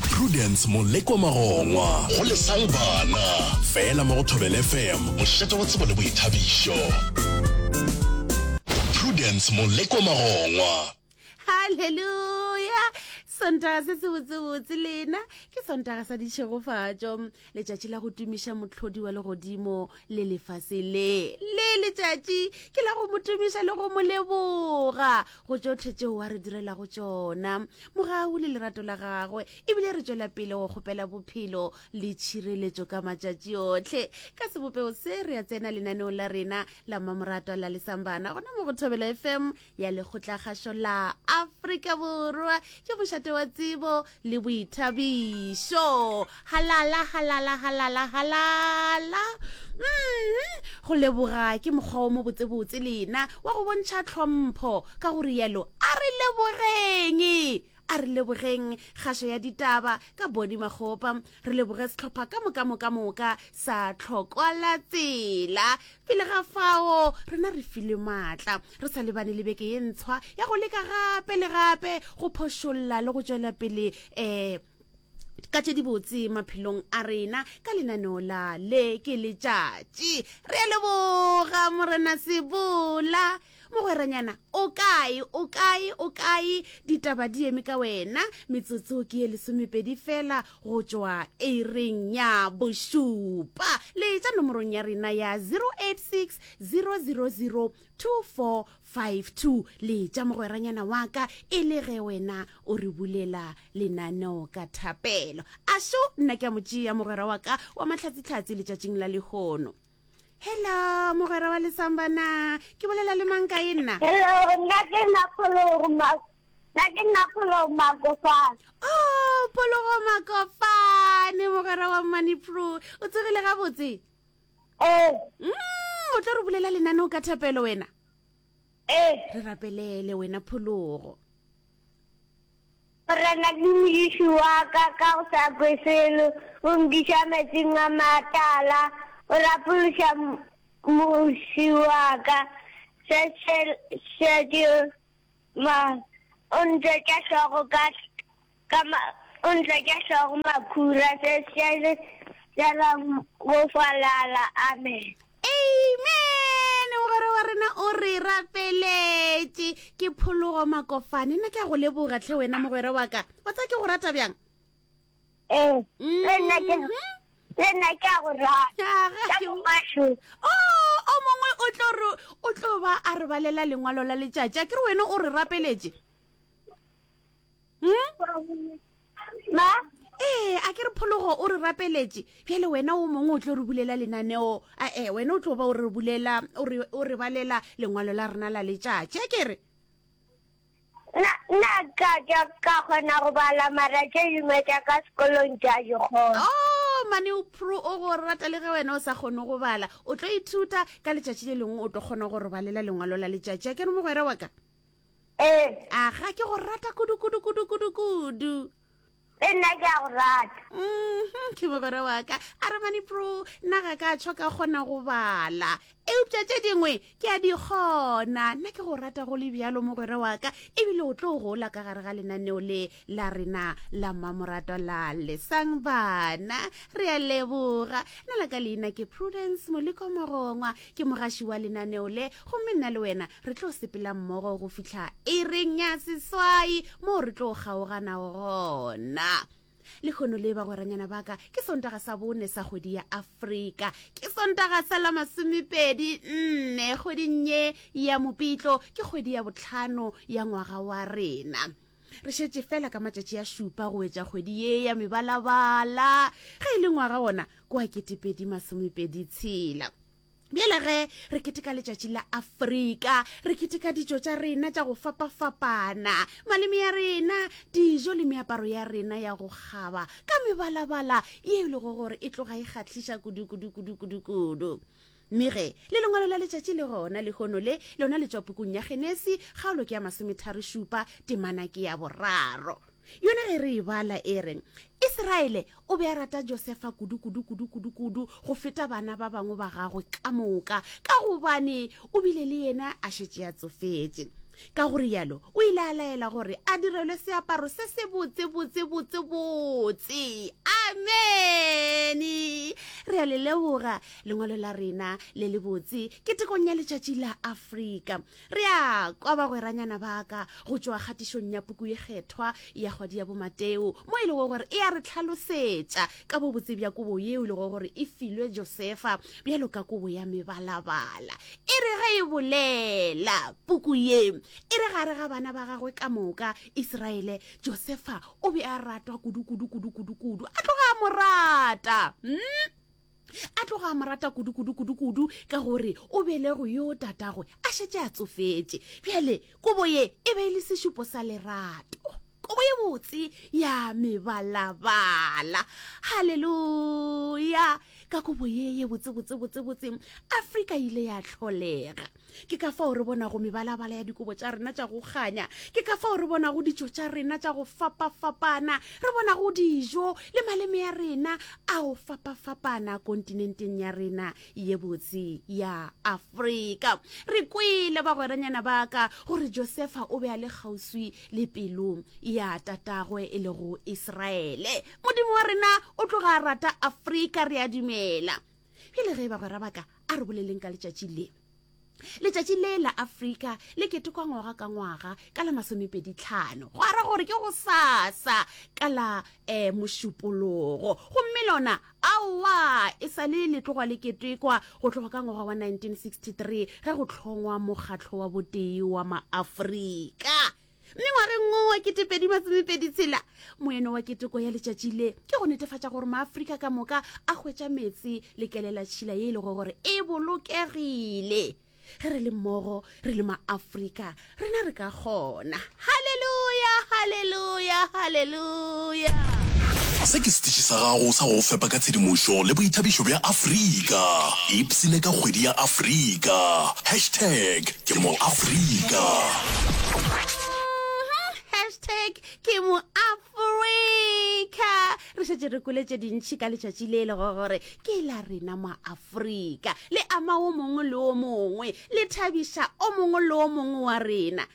Prudence Molekwa Magongwa. Go lesang bana. Fela mo go Thobela FM, mošate wa tsebo le boithabišo. Prudence Molekwa Magongwa. Haleluya! Sontaga se se botsebotse lena ke sontaga sa ditšhegofatšo. letšatši la go tumiša mohlodi wa legodimo le lefase le le letšatši ke la go mo tumiša le go mo leboga go tšotlhe tšeo wa re direlago tšona mogau le lerato la gagwe ebile re tšwela pele go kgopela bophelo le tšhireletšo ka matšatši otlhe ka sebopego se re ya tsena lenaneo la rena la mamoratwa la lesambana gona mo go thobela fm ya lekgotlakgašo la afrika borwa ke mošate wa tsebo le boithabišo halala halala halala halala mm-hmm. go leboga ke mokgwa o mo botsebotse lena wa go bontšha tlhompho ka go rialo a re lebogeng A re lebogeng kgašo ya ditaba ka Boni Makgopa. Re leboge sehlopha ka mokamokamoka sa Tlhokwalatsela. Pele ga fao, rena re filwe maatla re sa lebane le beke ye ntshwa ya go leka gape le gape go phošolla le go tšwela pele um ka tše dibotse maphelong a rena ka lenaneo la le ke letšatši re a leboga morena sebola Mogweranyana, o kae, o kae, o kae? Ditaba di eme ka wena. Metsotso ke ye lesomepedi fela go tšwa eireng ya bošupa. Le tša nomorong ya rena ya 086 000 2452. Le tša mogweranyana wa ka e le ge wena o re bulela lenaneo ka thapelo. Ašo nna ke a mo tšea mogwera wa ka wa matlhatsitlhatsi letšatšing la lehono. hello mogwera wa lesambana ke bolela le mang kae nna hello nna ke nna phologoma nna ke nna phologoma kofane o oh, phologoma kofane mogwera wa money pro o tsogile gabotse ee eh. mm, o tla re bulela lenane o ka thapelo wena Ee. Re rapelele wena phologo. Morena ke Modiši wa ka, ka go sa kwe selo, o nkiša metsing a matala, o rapološa mmuši wa ka. Šešelšetše ma, o ntšetša hlogo ka. Ka ma, o ntla tša hlogo makhura, se šele tšela go falala. Amen. Amen. Mogwera wa rena o re rapeletše. Ke phologo makofane. Nna ke a go leboga tlhe wena mogwera wa ka. Wa tsa ke go rata bjang? Ee. Mm-hmm. Le nna ke le nna ke a go rata. Ka mongwasho. Oh, o mongwe o tlo re o tlo ba a re balela lengwalo la letšatši. A ke re wena o re rapeletše? hmm? ma ee a ke re phologo o re rapeletše bjale wena o mongwe o tlo re bulela lenaneo ae wena o tlo ba o re bulela o re balela lengwalo la rena la letšatši a ke re nna ka ka kgona go bala mara tše dingwe tša ka sekolong tša di kgona o oh, mane o pro o go rata le ge wena o sa kgone go bala o tlo ithuta ka letšatši le lengwe o tlo kgona go re balela lengwalo la letšatši a ke re mogwera wa ka Ee. Aga, ke go rata kudu kudu kudu kudu kudu. Le nna ke a go rata. Mhm, ke mogwera wa ka. A re mane pro, nna ga ka tshwa ka kgona go bala. Eupša tše dingwe ke a di kgona. Nna ke go rata go le bjalo mogwera wa ka, ebile o tlo gola ka gare ga lenaneo le. la rena la mmamoratwa la lesang bana re a leboga na la ka leina ke prudence moleko mogongwa ke mogaši wa lenaneo le gomme nna le wena re tlo sepela mmogo go fitlha e reng ya seswai moo re tlo kgaoganago gona le kgono le bagweranyana baka ke sontaga sa bone sa kgwedi ya afrika ke sontaga sa la masomepedi nne kgweding ye ya mopitlo ke kgwedi ya botlhano ya ngwaga wa rena Re šetše fela ka matšatši a šupa go wetša kgwedi ye ya mebalabala ge e le ngwaga wona ko a ketepedi masomepedi tshela bjale ge re keteka letšatši la afrika re keteka ditšo tša rena tša go fapafapana maleme ya rena dijo le meaparo ya rena ya go kgaba ka mebalabala ye e lego gore e tloga e kgatlhiša kudukudukudukudukudu Mme ge, le Lengwalo la letšatši le gona lehono le, lona le tšwa pukung ya Genesi, kgaolo ke ya masometharo-šupa, temana ke ya boraro. Yona ge re e bala, e re, Israele o be a rata Josefa kudu, kudu, kudu, kudu, kudu, go feta bana ba bangwe ba gagwe ka moka, ka gobane o bile le yena a šetše a tsofetše. Ka go rialo, o ile a laela gore a direlwe seaparo se se botse, botse, botse, botse. Amene! Re a le leboga. lengwalo la rena le le botse ke tekong ya letšatši la afrika re a kwa bagweranyana baka go tšwa kgatišong ya puku e kgethwa ya kgwadi ya bomateo mo e lego gore e ya re tlhalosetša ka bobotse bja kobo yeo e lego gore e filwe josefa bjalo ka kobo ya mebalabala e re ge e bolela puku ye e re gare ga bana ba gagwe ka moka iseraele josefa o be a ratwa kudu kudu kudu kudu kudu a tloga a mo rata mm? a tloga a mo rata kudu-kudu-kudu-kudu ka gore o belego yo tatagwe a šetse a tsofetše bjale kobo ye e be e le sešupo sa lerato kobo ye botse ya mebalabala halleluya ka kobo ye ye botsebotsebotsebotseng afrika ile ya tlholega ke ka fao re bonago mebalabala ya dikobo tša rena tša go kganya ke ka fao re bonago ditšo tša rena tša go fapafapana re bonago dijo le maleme ya rena a go fapafapana kontinenteng ya rena ye botse ya afrika re kwele bagweranyana ba ka gore josefa o be a le kgauswi le pelong ya tatagwe e lego iseraele modimo wa rena o tloga a rata afrika re a dumela bjale ge e bagwera baka a re boleleng ka letšatši le letšatši le la afrika le ketekwa ngwaga ka ngwaga ka la masomepeditlhano go ara gore ke go sasa ka la um mošupologo gomme lona aowa e sa le le tloga le ketekwa go tloga ka ngwaga wa 1963 ge go tlhongwa mokgatlho wa botee wa maafrika mme ngwageng wo wa ketepedi masomepedi tshela moeno wa keteko ya letšatši le ke go netefatša gore maafrika ka moka a hwetša metse lekelela tšhila ye e lego gore e bolokegile ge re le mmogo re le maafrika rena re ka kgona halleluja halleluja halleluja Se ke setiši sa gago sa go go fepa ka tshedimošo le boithabišo bja Afrika. Ipsine ka kgwedi ya Afrika. Hashtag ke moAfrika. Hashtag ke moAfrika. Re šetše re kwele tše dintši ka letšatši le le go gore ke la rena maAfrika. Le ama o mongwe le o mongwe. Le thabiša o mongwe le o mongwe wa rena.